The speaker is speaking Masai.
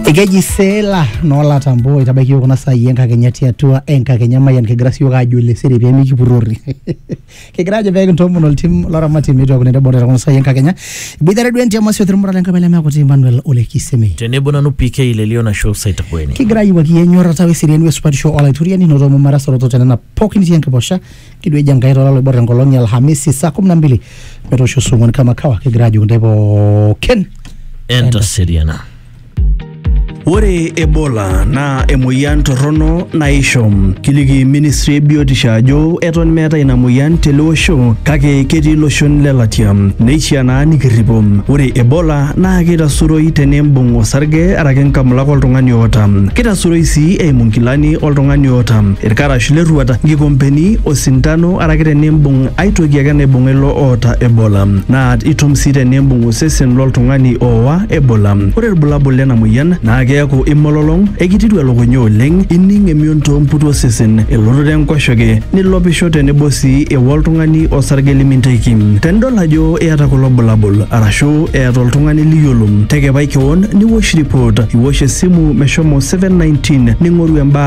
ekeji seela noolatambo itabaiki yiok kuna saai enkakenya tiatua enkakenya mayian kigira siyiok aajo ile siri pee mikipurrori kigira ajo pee kintoomon oltim loramati meitokini nitobora kuna saai enkakenya iboitare duo entiama sio thirmura le nkabila mekuti Emmanuel ole Kisemi tenebo nanu PK lelio nasho saitakueni kigira ayiwaki enyorrata weseriani wesupatisho olaituriani notomo marasoroto tenena pookin itii enkiposha kijo eji enkai tolalo oibor enkolong e alhamisi saa kumi na mbili metoosho saa ong'uan kama kawa kigira ajoki ntae pookin entaseriana Ore Ebola naa emoyian torrono naisho. Kiliki ministry e biotisho ajo eton meeta ina moyian tele osho kake ketii iloshon le latia. Neishaa naa nikirripo. Ore Ebola naa keitasuroi tenembung osarge araki nkamulak oltung'ani oota. Keitasuroi sii eimu nkilani oltung'ani oota. Irkarash le rruata, nkikompeni, osintano araki tenimbung ai toki ake naibung'a ilo oota Ebola naa itum sii tenimbung osesen lo ltung'ani oowa Ebola. Ore ilbulabul lena moyian naa keaku imololong, eikitiru elukunya oleng, ining emion too mputu osesen, elototo enkoshoke, nilopisho tenebo sii ewa oltung'ani osarge liminteki. Tenidol ajo iyata kulo bulabul arashu eeta oltung'ani liyiolo, tekepai kewon niwosh ripot, iwosh esimu meshomo 719 ning'oru embaata.